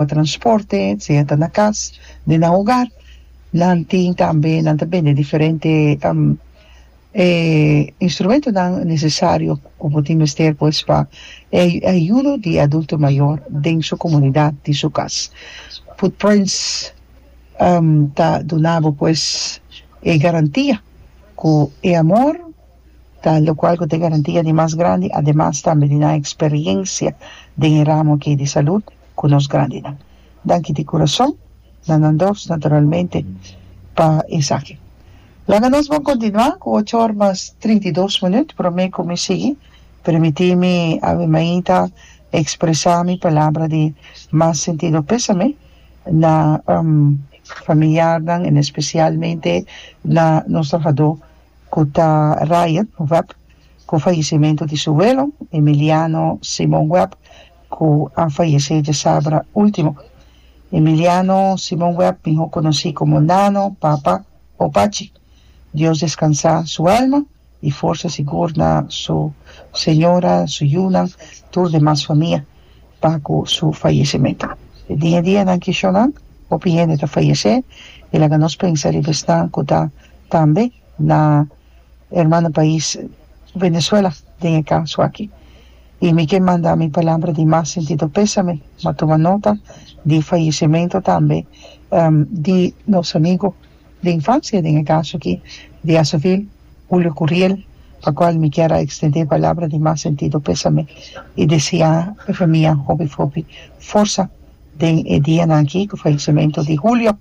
pa transporte sea ta na cas den nan hogar nan tin tambe nan ta bende diferente instrumentonan necesario cu bo tin mester pues pa e ayudo di e adulto mayor den su comunidad den su cas footprints ta duna bo pues e garantia cu e amor ta locual cu ta e garantia di mas grandi ademas tambe di nan experiencia den e ramo aki di salud. ku nos grandinan. Danki di kurason na nan dos naturalmente pa esaki. Laga nos bon kontinuá ku ocho or mas trinta i dos minüt promé ku mi sigui, permití mi awimainta ekspresá mi palabra di mas sentido pésame na familiarnan en espesialmente na nos trahadó ku ta Ryan Webb Ku fayesimentu di su welo, Emiliano Simon Webb, ku a fayesé djasabra último. Emiliano Simon Webb, mihó konosí komo Nano, Papa o Pachi. Dios deskansá su alma i forsa sigur na su señora, su yunan, tur demas famia pa ku su fayesimentu. E dia dia nan kishonnan, hopi hende ta fayesé i laga nos pensa riba esnan ku ta tambe na herman den pais Venezuela den e caso aki y mi ke manda mi palabra di mas sentido pesame ma tuma nota di fallecimento tambe di nos amigo di infancia den e caso aki di Azovil Julio Curiel pa cual mi kier a extende e palabra di mas sentido pesame y desia e famia hopi hopi forsa den e dianan aki cu fallecimento di Julio.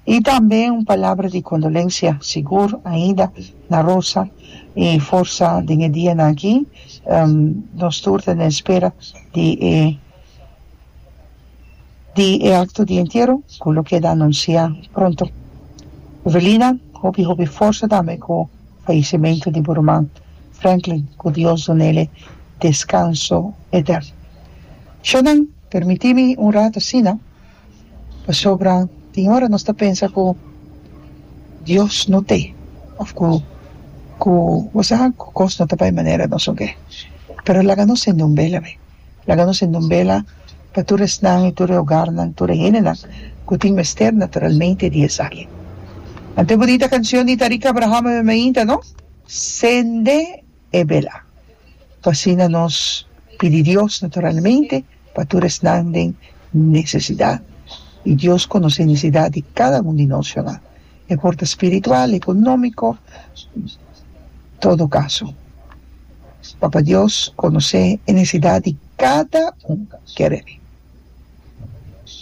Y tambe un palabra di condolencia sigur ainda na Rosa y forsa den e dia nan aki nos tur ta na espera di e di e acto di entiero cu lo keda anuncia pronto. Evelina hopi hopi forsa tambe cu fallecimento di bo ruman Franklin cu Dios dunele descanso eterno. Shannan permiti mi un rato asina. Pasobra tin ora nos ta pensa ku Dios no t'e òf ku ku bo sa ku kos no ta bai manera nos oke. Pero laga nos ser nun bela be. Laga nos ser nun bela pa tur esnan i tur e ogarnan, tur e hendenan ku tin mester naturalmente di esaki. Ante e bunita kanshon di Tariq Abraham a mi mainta, no? Sende e bela. Cu asina nos pidi Dios naturalmente pa tur esnan den necesidad. Y Dios conoce e necesidad di cada un di nos, ciu nan? E por ta spiritual, economico, todo caso. Papa Dios conoce e necesidad di cada un, kere.